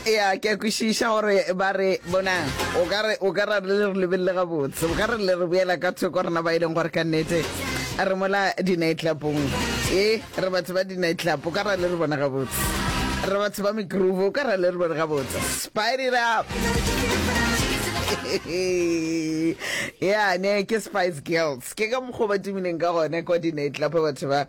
ya ke a kwešiša gore ba re bonang o ka re o ka ra le re lebelele gabotse o ka re le re boela ka thoko rena ba e leng gore ka nnete a re mola dinaitlapong e re batho ba dinaitlapo o ka ra le re bona gabotse re batho ba megroove o ka ra le re bone gabotse spied it up ya ne ke spice girls ke ka mokgwa ba tumileng ka gone kwa dinaitlapa batho ba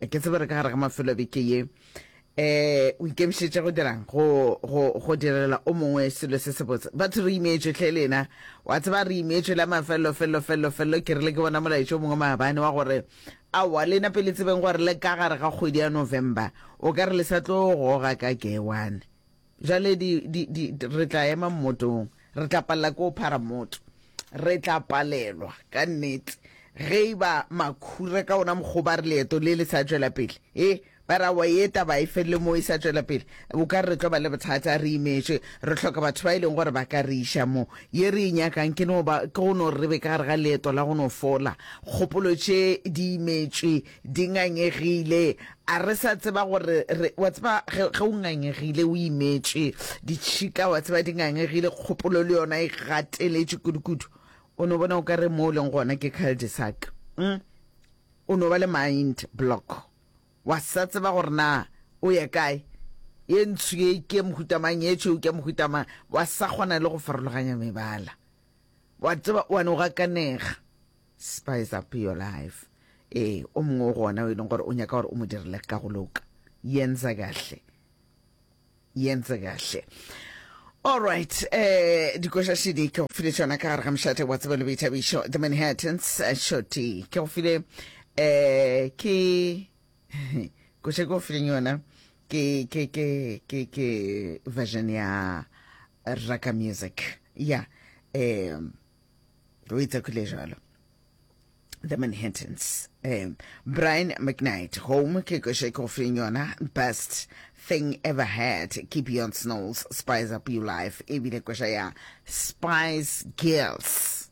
ke tsebe re ka gare ga mafelo beke ye eh o ikemišetše go dirang go go go direla o mongwe selo se se botse batho re imeetswe tlhe lena wa tseba re imeetswe la mafelelo felelo felelo felelo ke rile ke bona molaetso o mongwe maabane wa gore aowa lena pele tsebeng gore le ka gare ga kgwedi ya november o ka re le sa tlo goga ka ke one Bjale di, di, di, re tla ema mmotong. Re tla palela ke go phara mmoto. Re tla palelwa, ka nnete. Ge e ba makhura ka ona mokgwa ba re leeto le le sa tšwela pele, e, ba ra wa ye taba e felele mo e sa tšwela pele, o ka re re tlo ba le bothata, re imetšwe, re hloka batho ba e leng gore ba ka re iša mo. Ye re e nyakang ke no ba, ke go no re be ka gare ga leeto la go no fola. Kgopolo tše di imetšwe Di ngangegile, a re sa tseba gore re, wa tseba ge, ge o ngangegile o imetše, ditšhika, wa tseba, di ngangegile, kgopolo le yona e gateletše kudukudu. O no bona o ka re mo o leng gona ke cul-de-sac. Hm? O no ba le mind block. Wa sa tseba gore na o ya kae. Ye ntsho ye ke ya mohuta mang, ye tšhweu ke ya mohuta mang. Wa sa kgona le go farologanya mebala. Wa tseba, wa no gakanega. Spice up your life. Ee, o mongwe o gona o e leng gore o nyaka gore o mo direle ka go loka. Yenza kahle. Yenza kahle. All right, eh, dikoša šidi ke go file tšona ka gare ga mošate wa tsebo le boithabišo the manhattans eh, shoti ke go file eh ke koša ke go fileng yona ke ke ke ke ke version ya raka music ya yeah. um o itse khule jalo the manhattans um, brian mcknight home ke kwešo ke go feng yona best thing ever had ke beyond snows spice up your life ebile kwešo ya spice girls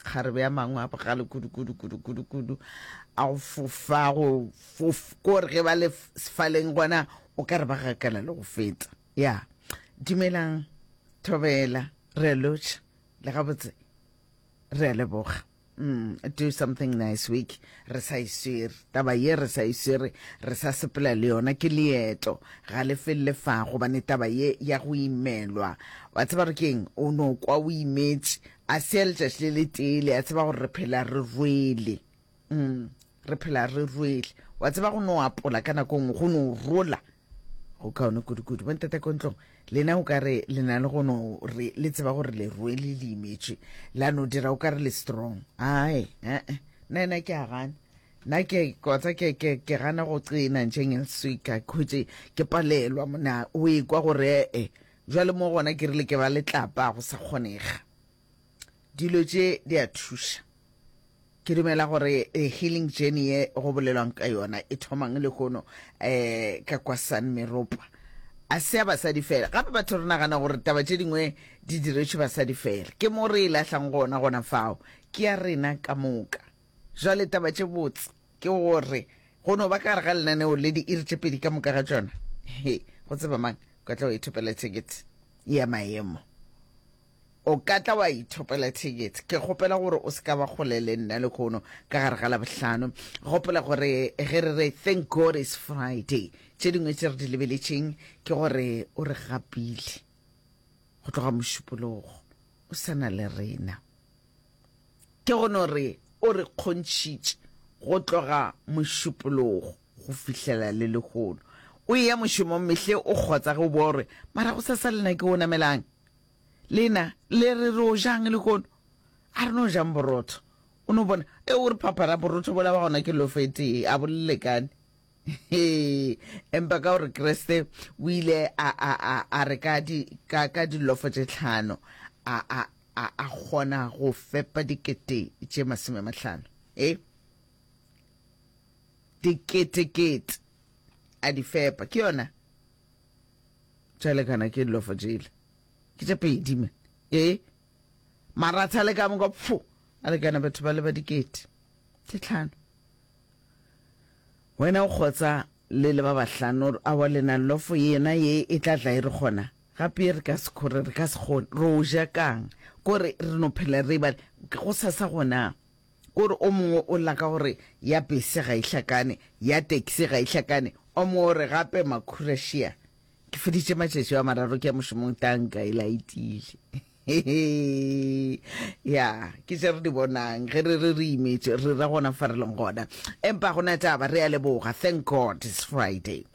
kgarebe ya mangwe a bogale kudu kudu kudu kudu kudu a go fofa go fof kore ge ba le sefaleng gona o ka re ba gakala le go feta ya dumelang thobela re lotšha le gabotse re a leboga Mm, do something nice week re sa iswere taba ye re sa iswere re sa sepela le yona ke leeto ga le felele fa gobane taba ye ya go imelwa wa tseba re keng o no kwa o imetse a se ya letšatši le letele a tseba gore re phela re rwele mm, re phela re rwele wa tseba go no apola ka nako nngwe go no rola go kaone kudu-kudu bo ntata ko ntlong lena o ka re le na le go no re le tseba gore le rwele le imetše la no dira o ka re le strong ae ee nna ena ke a gana nna ke kotsa ke ke ke gana go tsena ntšeng elswika khutše ke palelwa mona o ekwa gore ee jwale mo gona ke rile ke ba letlapa go sa kgonega Dilo tše di a thuša. Ke dumela gore e healing journey ye go bolelwang ka yona e thomang le kono eh ka kwa San Meropa. A se ya basadi fela. Gape batho re nagana gore taba tše dingwe di diretšwe basadi fela. Ke mo re e lahlang gona gona fao. Ke ya rena ka moka. Jwale taba tše botse ke gore go no ba ka gare ga lenaneo le di iri tše pedi ka moka ga tšona. He, go tseba mang? Ka tla o ithopela ticket ya maemo. O ka tla wa ithopela thekete. Ke kgopela gore o se ka ba kgole le nna lehono ka gare ga Labohlano. Gopola gore ge re re Thank God It's Friday, tše dingwe tše re di lebeletšeng ke gore o re gapile go tloga Mošupologo, o sa na le rena. Ke go no re o re kgontšhitše go tloga Mošupologo go fihlela le lehono. O eya mošomong mehle o kgotsa ge o boa o re, Mara gosasa lena ke o namelang? Lena le re re o jang le kono. A re no jang borotho. O no bona e o re phaphara borotho bola ba gona ke lofete a bolelekane. Hee empa ka gore Kreste o ile a a a a re ka di ka ka dilofo tše tlhano a a a a kgona go fepa dikete tše masome mahlano. E dikete kete a di fepa ke yona tšalekana ke lofo jele ke tša pedi man ee maratha le ka moka pfo a lekana batho ba le ba dikete tše tlhano wena o kgotsa le le ba bahlano a wa lena lofo yena ye e tla tla e re gona gape re ka sekgore re ka sekgone ro ja kang kore re no phela re ba go sasa gona Kore o mongwe o lla ka go re ya bese ga e hlakane, ya taxi ga e hlakane, o mongwe o re gape makhura šia ke feditše matšatši a mararo ke ya mošomong tanka e laetile. ya ke tše re di bonang ge re re re imetše re ra gona fa re leng gona empa gona taba re a leboga thank god it's friday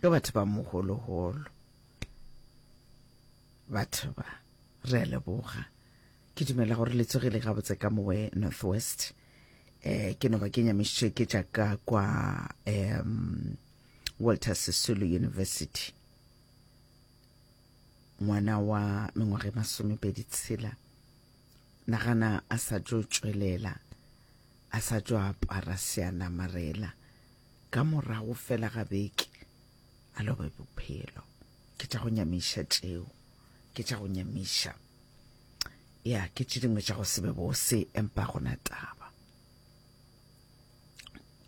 Ke batho ba mogologolo batho ba re a leboga ke dumela gore le tsogile gabotse ka mowe northwest eh ke no ba ke nyamišitše ke tša ka kwa um walter sisulu university ngwana wa mengwaga e masomepedi tshela nagana a sa tšo tšwelela a sa tšo apara seanamarela Ka morago fela ga beke, a lobe bophelo. Ke tša go nyamiša tšeo. Ke tša go nyamiša. Ya, ke tše dingwe tša go se be bose, empa gona taba.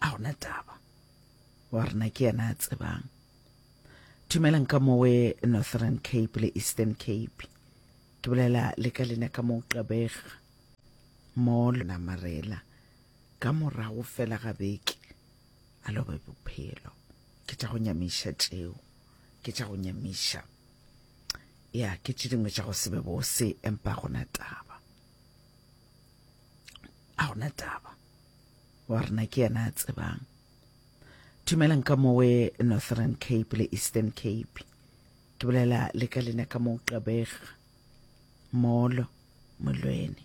A gona taba. Wa rena ke yena a tsebang. Dumelang ka mowe Northern Cape le Eastern Cape. Ke bolela le ka lena ka mo qabega. Mo lona marela. Ka morago fela ga beke a lobe bophelo. Ke tša go nyamiša tšeo, ke tša go nyamiša. Ya, ke tše dingwe tša go se be bose, empa a gona taba. A gona taba. Wa rena ke yena a tsebang. Dumelang ka mowe Northern Cape le Eastern Cape. Ke bolela le ka lena ka mo Gqeberha. Molo, molweni.